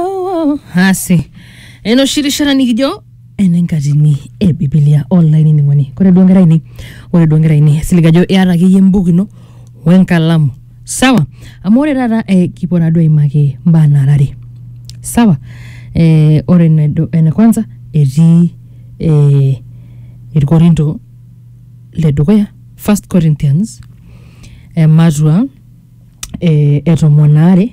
oh, hasi eno shirishara nikijo enenkatini e bibilia online ning'oni kore duo nkera ainei ore duo nkera ainei silig ajo iata akeyie embuku ino wenkalamu sawa amu ore taata eh, kipuo naaduo aimaki mbaa nara are sawa eh, ore enedu- ene kwanza etii eh, irkorinto le dukuya first corinthians ematua eh, etomon aare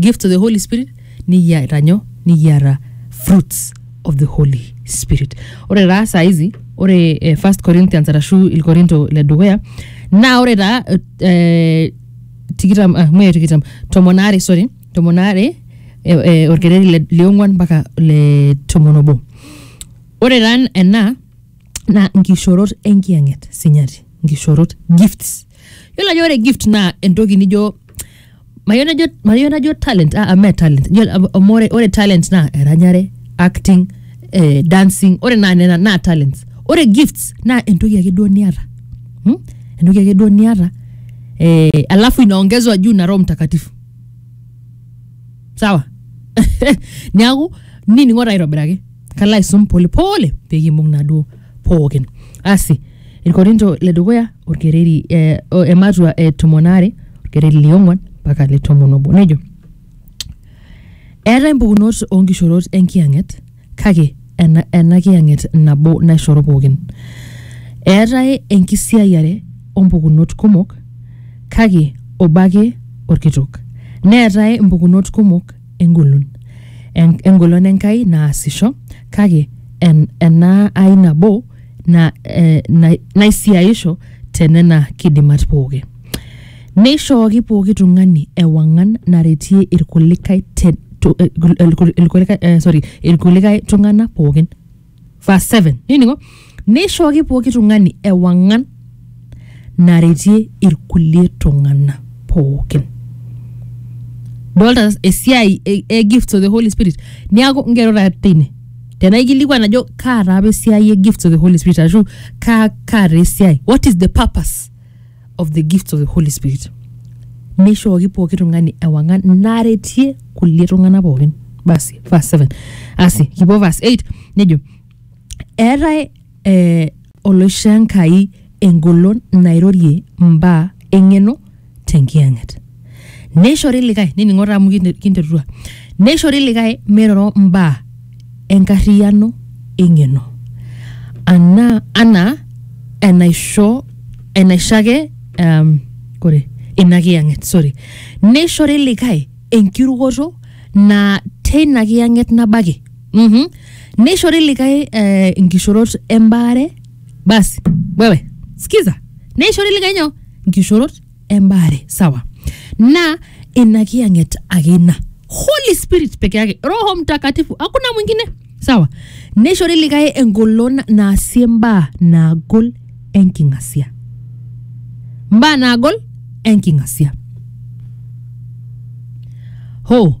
give to the holy spirit nikiata nyoo nikiata fruits of the holy spirit ore taa saa hizi ore eh, first corinthians arashu ilkorinto le dukuya naa ore taa eh, tikitam ah, mee tikitam tomon aare sorry tomon aare eh, eh, orkereri le liong'uan mpaka le tomon obo ore taa ena naa nkishorot enkiyang'et sinyati nkishorot gifts Yiolo ajo ore gift naa entoki nijo mayieu najo mayieu najo talent ah, ah, mee talent Yiolo, amu ore, ore talent naa eranyare acting eh, dancing ore naa nena naa talents ore gifts naa entoki ake duo niata hmm? entoki ake duo niata eh, alafu inaongezwa juu na roho mtakatifu sawa niaku nining'o taa aitobiraki kalo aisum polepole pekimbung naduo pookin asi Ilkorinto le dukuya olkereri eh, o ematua e tomon aare olkereri liong'uan mpaka le tomon obo nejo eetae mpukunot oonkishorot enkiyang'et kake ena, ena kiyang'et nabo naishoro pookin eetae enkisiayiare ompukunot kumok kake obo ake olkitok neetae mpukunot kumok engolon En- engolon enkai naasisho kake en, ena ai nabo na, eh, na, naisiaisho te nena kidimat pooki neishooki pooki tung'ani ewang'an naretie irkulikae te- tu- eh, kul- eh, kul- irkulikae eh, sorry irkulikae tung'anak pookin verse 7 niningo neishooki pooki tung'ani ewang'an naretie irkulie tung'ana pookin dolta esiai e, e gifts of the holy spirit niaku ngero taa teine tenaikilikuan ajo kaa taa apa esiai e gifts of the holy spirit ashu kaa kaa taa esiai what is the purpose of the gifts of the holy spirit neishooki pooki tung'ani ewang'an naretie kulie tung'ana pookin basi verse 7 asi kipuo verse 8 nejo eetae eh, Oloishoo Enkai engolon nairorie mbaa eng'eno te Nkiyang'et. Neishori likae, nining'o taa amu kinterutua, neishori likae meiroro mbaa enkarriyano eng'eno anaa anaa enaisho enaisho ake um, kore ina kiyang'et sorry. Neishori likae enkirukoto naa teina kiyang'et nabo ake. Mhm. neishori likae eh, inkishorot embaare basi wewe sikiza neishori likae nyoo inkishorot embaare sawa na ina kiyang'et ake ina holy spirit peke yake roho mtakatifu hakuna mwingine sawa neishori likae engolon naasie mbaa naagol enking'asia mbaa naagol enking'asia ho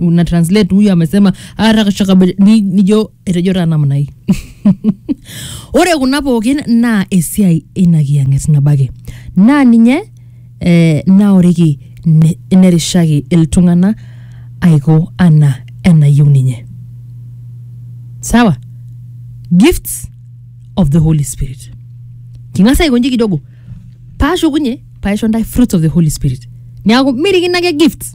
una translate huyu amesema arakashakabe ni- nijo etejo taa namna hii ore kuna pookin naa esiai eina kiyang'et nabaki naa ninye eh, naoriki ne- nerishaki iltung'ana aiko ana enayieu ninye sawa gifts of the holy spirit king'as aikonji kidogo paashukunye paisho ntae fruits of the holy spirit neaku mirikino ake gifts